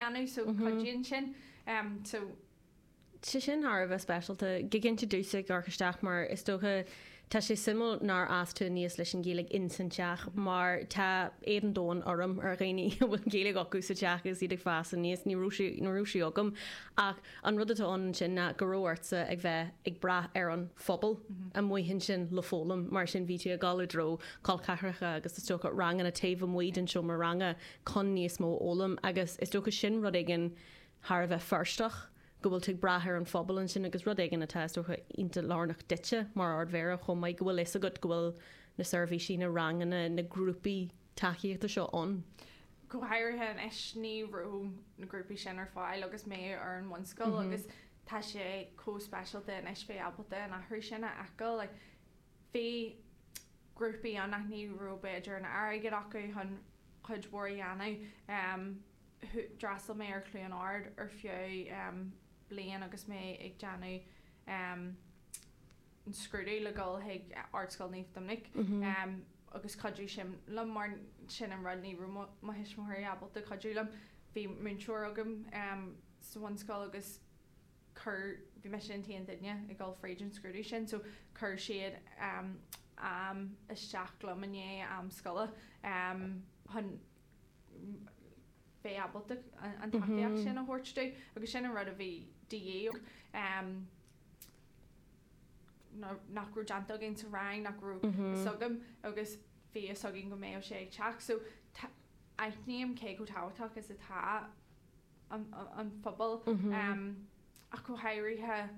dhéanamh so cuidíonn sin so. sé sin thar a bheith speisialta. Go cinnte dúisigh York isteach mar is dócha tá sé suimiúil nár fhás tú aníos leis an Ghaeilge ins an teach mar tá éad an domhain orm ar dhaoine a bhfuil Gaeilge acu sa teach agus iad ag fás aníos. Ní raibh sí ní raibh sí agam ach an rud atá ann ansin ná go raibh ortsa a bheith ag brath ar an phobal amuigh ansin le foghlaim mar sin bhí tú ag dul i dtreo colceathracha agus is dócha ranganna taobh amuigh den seomra ranga chun níos mó a fhoghlaim agus is dócha sin rud éigin thar a bheith Feirsteach, go bhfuil tú ag brath ar an phobal ansin agus rud éigin atá, is dócha, iontach lárnach duitse mar Ard-Mhéara chomh maith, go bhfuil fhios agat go bhfuil na seirbhísí, na ranganna, na grúpaí tacaíochta seo ann. Go háirithe anois, ní raibh na grúpaí sin ar fáil agus mé ar an mbunscoil agus tá sé chomh speisialta anois bheith ábalta an athrú sin a fheiceáil. Bhí grúpaí ann nach raibh b'fhéidir an airgead acu chun cuid mhór a dhéanamh. D'fhreastal mé ar Chluain Ard ar feadh bliain agus mé ag déanamh an scrúdú le dhul chuig Ardscoil Naomh Doiminic agus chuidigh sin liom mar sin an rud, ní raibh mo thuismitheoirí ábalta cuidiú liom. Bhí múinteoir agam sa bhunscoil agus chuir, bhí mise an t-aon duine ag dul fríd an scrúdú sin so chuir siad am isteach liom i ndiaidh am scoile chun bheith ábalta an tacaíocht sin a thabhairt dom agus sin an rud a bhí de dhíth orm, nach raibh déanta againn sa rang, nach raibh fhios agam agus bhí fhios againn go mbeadh sé ag teacht so aithním cé chomh tábhachtach is atá. an phobail, ach go háirithe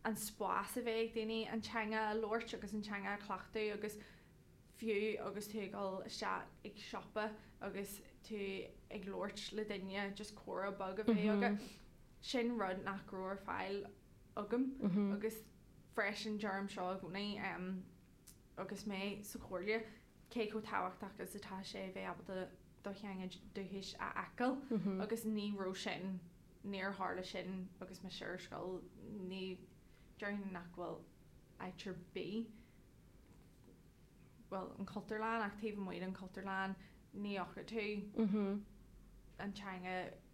an spás a bheith ag daoine an teanga a labhairt agus an teanga a chleachtadh agus fiú agus tú ag dul isteach chuig siopa agus tú ag labhairt le duine, just comhrá beag a bheith agat. Sin rud nach raibh ar fáil agam agus freisin deirim seo i gcónaí. agus mé sa Chomhairle, cé chomh tábhachtach is atá sé a bheith ábalta do theanga dúchais a fheiceáil, agus ní raibh sin, níor tharla sin agus mise ar scoil, ní, déarfainn nach bhfuil áit ar bith, bhuel, an Chultúrlann, ach taobh amuigh den Chultúrlann, ní fhaca tú an teanga.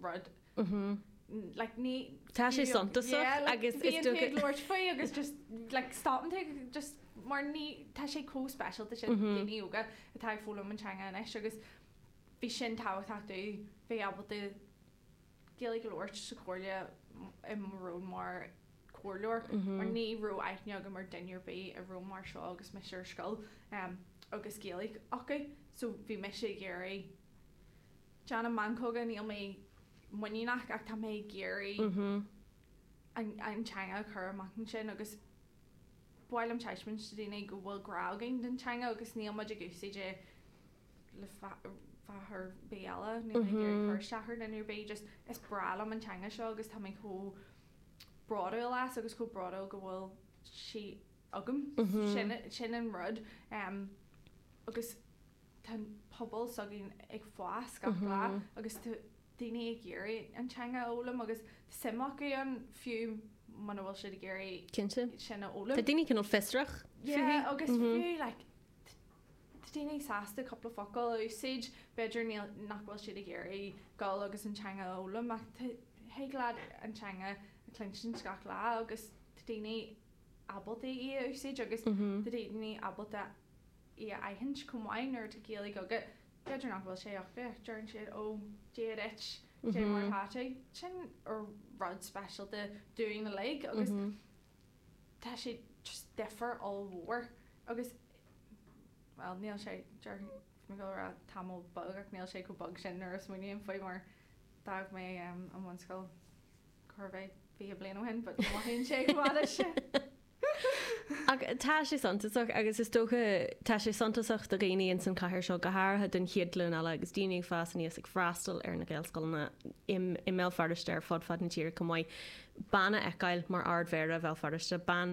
rud. Like ní. Tá sé suntasach agus. Bíonn tú ag labhairt faoi agus just like stopann tú ag just mar ní, tá sé chomh speisialta sin daoine óga atá ag foghlaim an teanga anois agus bhí sin tábhachtach dúinn, bheith ábalta Gaeilge a labhairt sa chomhairle i mo ról mar comhairleoir mar ní raibh aithne agam ar duine ar bith i ról mar seo agus mise ar scoil agus Gaeilge acu so bhí mise ag iarraidh Déanaim meancóga, níl mé muiníneach ach tá mé ag iarraidh an teanga a chur amach ansin agus b'fhearr liom taispeáint do dhaoine go bhfuil grá againn don teanga agus níl muid ag úsáid é le fáth ar bith eile. Níl mé ag iarraidh cur isteach ar dhuine ar bith, just is breá liom an teanga seo agus tá mé chomh bródúil as agus chomh bródúil go bhfuil sí agam. Sin an rud. Agus tá an pobal s'againn ag fás gach lá agus tá daoine ag iarraidh an teanga a fhoghlaim agus tá suim acu ann, fiú muna bhfuil siad ag iarraidh sin a fhoghlaim. Tá daoine cineál fiosrach fúithi. Tá daoine sásta cúpla focal a úsáid, b'fhéidir nach bhfuil siad ag iarraidh dul agus an teanga a fhoghlaim ach thig leat an teanga a chluinsint gach lá agus tá daoine ábalta í a úsáid agus tá daoine ábalta í a aithint chomh maith nuair atá Gaeilge agat. B'fhéidir nach bhfuil sé ach bheadh, deireann siad ó Dia duit, caidé mar atá tú. Sin rud speisialta dúinn uilig agus tá sé just difear ollmhór agus bhuel níl sé, deireann mé go raibh tamall beag ach níl sé chomh beag sin nuair a smaoiním faoi mar d'fhág mé an bhunscoil Cérbh é? Fiche bliain ó shin, but mothaíonn sé chomh fada sin. Ach tá sé suntasach agus is dócha tá sé suntasach do dhaoine ins an chathair seo, go háirithe don chéad ghlúin eile agus daoine ag fás aníos ag freastal ar na Gaelscoileanna i mBéal Feirste ar fud fad na tíre chomh maith, bean a fheiceáil mar Ard-Mhéara Bhéal Feirste, bean.